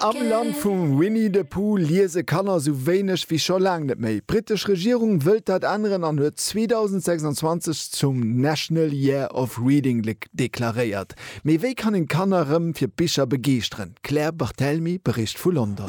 Am Land vum Winnie de Pooh liese Kanner sou wéineg wéi scho laang net méi. D'brittesch Regierung wëllt dat änneren an huet 2026 zum National Year of Reading deklaréiert. Mee wéi kann een d'Kanner rëm fir Bicher begeeschteren? D'Claire Barthelmy bericht vu London.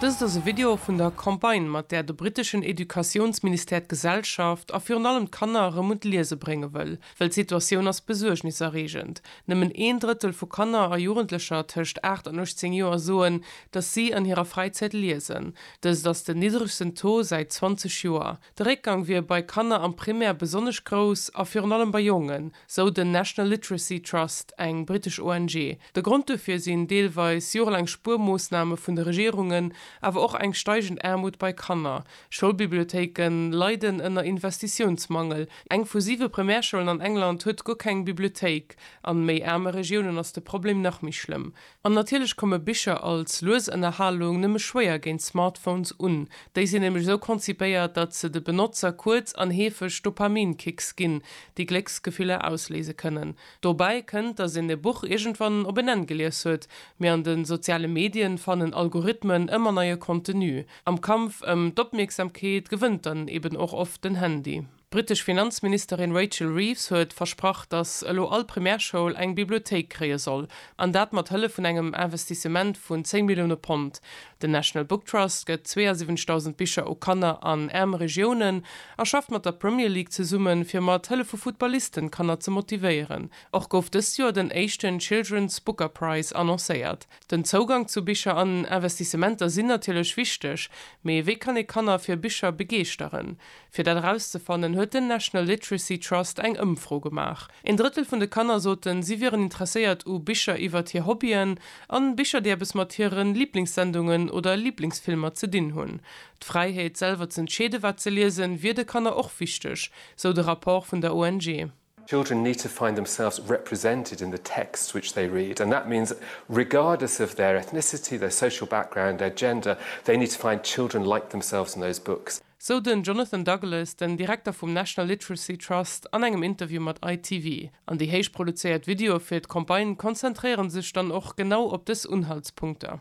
Dëst ass e Video vun der Campagne, mat där de britteschen Educatiounsministère d'Gesellschaft a virun allem d'Kanner erëm un d'Liese brénge wëll. wëll, well d'Situatioun ass besuergniserreegend. Nëmmen een Drëttel vu Kanner a Jugendlecher tëscht 8 an 18 Joer soen, datt si an hirer Fräizäit liesen. Dëst ass den niddregsten Taux säit 20 Joer. De Réckgang wier bei Kanner am Primär besonnesch grouss a virun allem bei Jongen, sou den National Literacy Trust, eng britesch ONG. De Grond dofir sinn deelweis jorelaang Spuermoossname vun de Regierungen, awer och eng steigend Aarmut bei Kanner, Schoulbibliothéike leiden ënner Investitiounsmangel. Eng vu siwe Primärschoulen an England huet guer keng Bibliothéik. An méi aarme Regiounen ass de Problem nach méi schlëmm. An natierlech komme Bicher als lues Ënnerhalung nëmme schwéier géint Smartphones un. Déi sinn nämlech esou konzipéiert, datt se de Benotzer kuerz an heefeg Dopaminkicks ginn, déi Glécksgefiller ausléise kënnen. Dobäi kënnt, datt een e Buch iergendwann op en Enn gelies huet, mee an de soziale Medien fannen Algorithmen ëmmer neie Contenu. Am Kampf ëm d'Opmierksamkeet gewënnt dann eben och oft den Handy. D'brittesch Finanzministerin Rachel Reeves huet versprach, datt elo all Primärschoul eng Bibliothéik kréie soll, an dat mat Hëllef vun engem Investissement vun 10 Millioune Pond. Den National Book Trust gëtt 72.000 Bicher u Kanner an aarm Regiounen a schafft mat der Premier League zesummen, fir mat Hëllef vu Footballisten d'Kanner ze motivéieren. Och gouf dëst Joer den éischten Children's Booker Prize annoncéiert. Den Zougang zu Bicher an Investissementer sinn natierlech wichteg, mee wéi kann ee Kanner fir Bicher begeeschteren? Fir dat erauszefannen, huet den National Literacy Trust eng Ëmfro gemaach. Een Drëttel vun de Kanner soten, si wieren interesséiert u Bicher iwwert hir Hobbyen an Bicher, déi eppes mat hiren Liblingssendungen oder Liblingsfilmer ze dinn hunn. D'Fräiheet, selwer z'entscheeden, wat se liesen, wier de Kanner och wichteg, sou de Rapport vun der ONG. Children need to find themselves represented in the texts which they read and that means regardless of their ethnicity, their social background, their gender, they need to find children like themselves in those books. Sou den Jonathan Douglas, den Direkter vum National Literacy Trust an engem Interview mat ITV. An déi héich produzéiert Videoe fir d'Campagne konzentréiere sech dann och genau op dës Unhaltspunkter.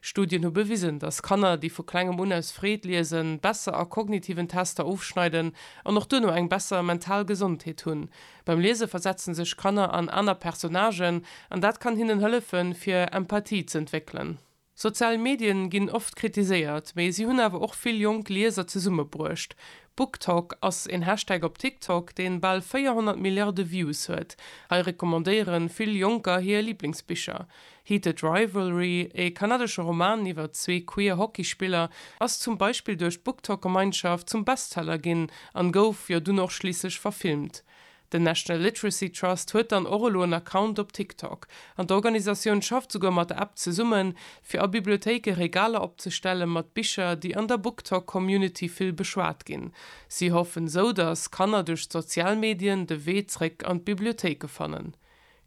Studien hu bewisen, dass Kanner, déi vu klengem un aus Freed liesen, besser a kognitiven Tester ofschneiden an och duerno eng besser mental Gesondheet hunn. Beim Liese versetze sech Kanner an aner Personnagen an dat kann hinnen hëllefen, fir Empathie z'entwéckelen. Sozial Medien ginn oft kritiséiert, mee si hunn awer och vill jonk Lieser zesummebruecht. BookTok ass een Hashtag op TikTok, deen bal 400 Milliarde Views huet. Hei recommandéieren vill Jonker hir Liblingsbicher. Heated Rivalry, e kanadesche Roman iwwer zwee queer Hockeyspiller, ass zum Beispill duerch d'BookTok-Gemeinschaft zum Bestseller ginn an gouf jo dunn och schliisslech verfilmt. Den National Literacy Trust huet dann och elo en Account op TikTok, an d'Organisatioun schafft souguer mat der App zesummen, fir a Bibliothéike Regaler opzestelle mat Bicher, déi an der BookTok-Community vill beschwat ginn. Si hoffen esou, datt Kanner duerch d'sozial Medien de Wee zréck an d'Bibliothéike fannen.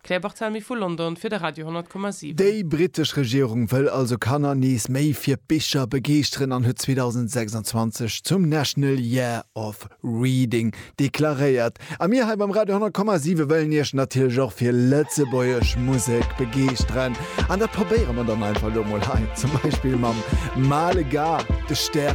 D'Claire Barthelmy vu London fir de Radio 10,7. Déi brittesch Regierung wëll also Kanner nees méi fir Bicher begeeschteren an huet 2026 zum National Year of Reading deklaréiert. A mir hei beim Radio 10,7 wëllen iech natierlech och fir lëtzebuergesch Musek begeeschteren. An dat probéiere mer dann einfach elo mol hei zum Beispill mam Male Gars, De Stär.